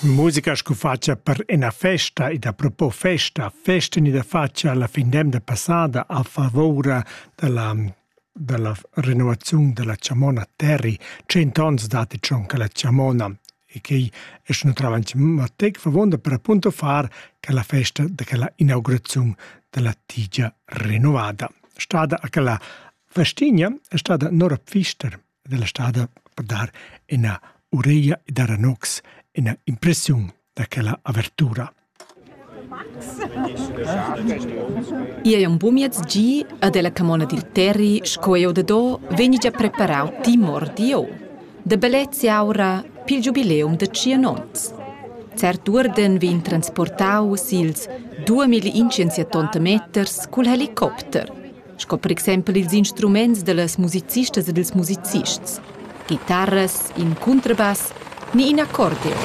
Musica scu fatscha per ena festa ed apropos festa, festa ni da fatscha alla fin d'emda passada a favoura dalla dalla renovaziun della chamona Terri, cent ons datti schon che la chamona e quei è schon avanti, ma tec favonda per appunto far che la festa de quella inaugurazione della tigia rinnovada. Stada a quella festigna è stada Nora Pfister, ed ella stada per dar ina ureglia e dar a Nox ina impressiun da quella avertura. Ia è un bumiez gi ed ella camona dil terri sco eu da do vegni già preparau ti mordi o. Da bellezia aura pil giubileum da cianons. Cert urden vegn transportau sils 2000 incensia tonta meters cul helicopter – sco per exempel ils instruments dallas musicistas e dils musicists, guitarras, in cuntrabass ni in accordeon.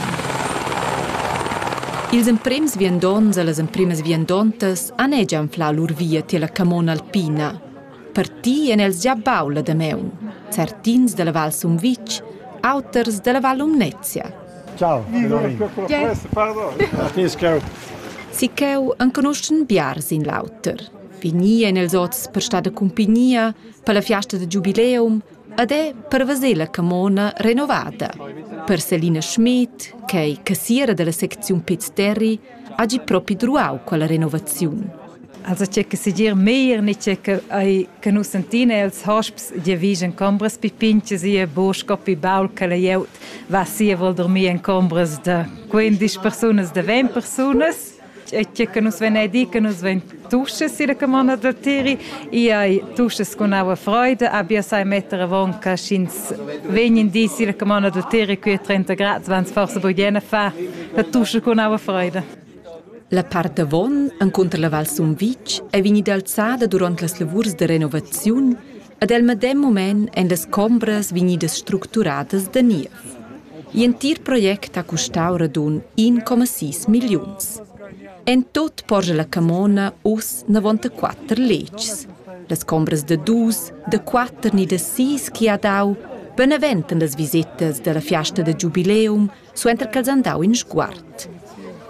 Ils emprems viandonts e las empremas viandontas han egia anflau lur via tier la camona alpina. Parti en els gia bau la Dameun, certins dalla Val Sumvitg, auters dalla Val Lumnezia. Ciao. Sicheu enconuschen biars in l'auter. Vegnir en els oz per star da cumpignia per la fiasta da giubileum ed è per veser la camona renovada. Per Selina Schmidt, che è cassiera della secziun Piz Terri, ha gi propi druau quella renovaziun. Also c'è che si dir meir ni c'è che ai che nu sentina els hosps di vigen combras pi pinches e bosch coppi baul che la jeut va sia vol dormir en combras da 15 persunas da 20 persunas e tge che nus venedi, che nus ven tuschas sira che mona da tiri, i ai tuschas con aua freuda, abia sai mettere avonca sch'ins vegnin di sira che mona da tiri qui a 30 grad, wenn es forse bugliena fa, la tuscha con aua freuda. La part avon, encunter la Val Sumvitg, è vegnida alzada durant las lavurs de renovaziun Ad el medem mument èn las chombras vegnidas structuradas da niev. L'entir project ha custau radun 1,6 milliuns. En tut porscha la camona uss 94 letgs. Las chombras da dus, da quatter ni da sis chi ha dau beneventan las visitas dalla fiasta da giubileum suenter ch'els han dau in sguard.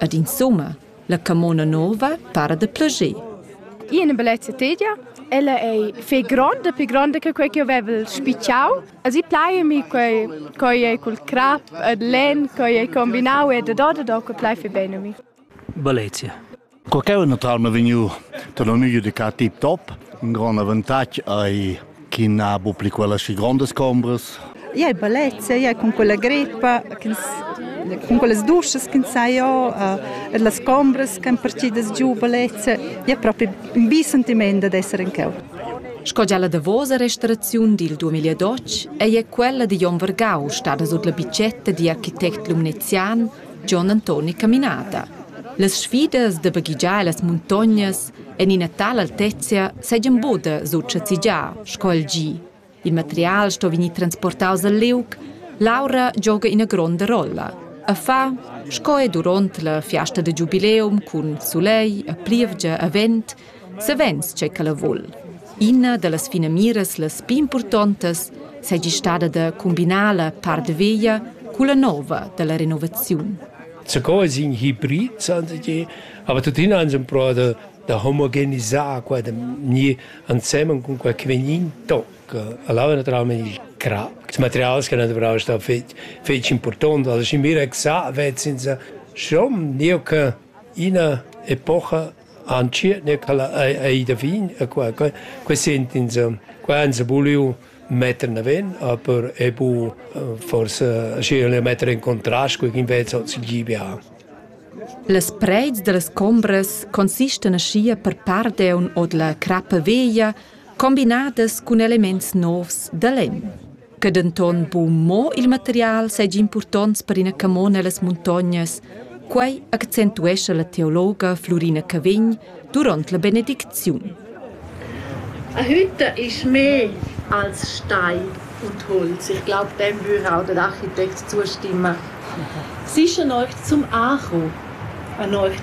Ad insumma La camona nova para da plager. Ina bellezza tedia, ella è fai gronda, più gronda che quei che avevo spicciau. Also plai mi quei quei è col crap ed len, quei è combinau e da da da da, quei plai fai bene mi. Bellezia. Quel che è un naturalme vegnu da l'unico di ca tip top, un gran avantatg ai chi n'ha bu pli quellas schi grondas chombras. Iai bellezia, iai cun quella greppa, cun quellas duschas ch'ins sa jo, e las chombras ch'han partidas giu bellezia, è propi un bi sentiment ad esser in cheu. Sco gia la davosa restauraziun dil 2012 ei quella digl onn vargau stada sut la bitgetta digl architect lumnezian Gion Antoni Caminata. Las sfidas da baghegiar las muntognas en ina tala altezia seigien buca successigià sco il gi. Il material sto vegnir transportaus al liug, l'aura gioga ina gronda rolla. A fa, sco è duront la fiasta da giubileum cun sulegl, a plievgia, a vent, Savens che ch'ella vul. Ina da las finamiras las pli impurtontas seigi stada da combinar la part veglia culla nova dalla renovaziun. Zucò es in hibrid, sante ti, aber tuttina han però da, da omogenisar qua, da gnir ansemen cun qualche vegnin toc. Allora naturalmente il crap, il material che naturalmente sta fetg, fetg important, also ich mir exakt, wird sind sie schon, io che ina epocha Antschiet ne ch'ella ei, ei da vin e qua que que sent'ins qua han se vuliu metter naven, aber è bu forsa aschi el metter in contrast cu ch'invece hoz il GBA. Las preits dallas combras consistan aschia per part aunc ord la crappa veglia, combinadas cun elements novs da lenn. che denton buc mo il material seigi impurtonts per ina camona ellas muntognas, quei accentuescha la teologa Flurina Cavegn duront la benedicziun. A Hütter ist mehr als Stein und Holz. Ich glaube, dem würde auch der Architekt zustimmen. Sicher euch zum Acho, an euch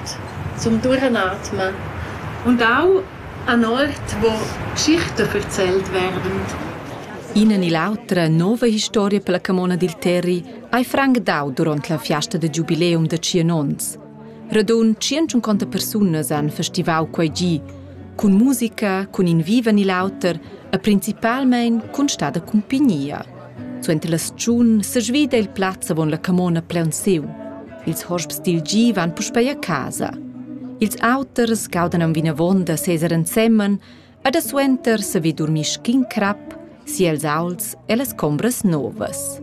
zum Durchatmen und auch Anort vo Geschichte erzählt werden. Ina ni l'autra nova historia per la camona dil Terri hai franc dau duront la fiasta da giubileum da tschien onns. Radun 150 persunas han festivau quei gi, cun musica, cun in viva ni l'auter e principalmein cun stada cumpignia. Suenter la stagiun sesvida il plaz avon la camona plaunsiu. Ils hosps dil gi van puspei a casa. Ils auters gaudan aunc vinavon da seser ensemen ed a suenter savi durmir schin crap si els aults e las combras novas.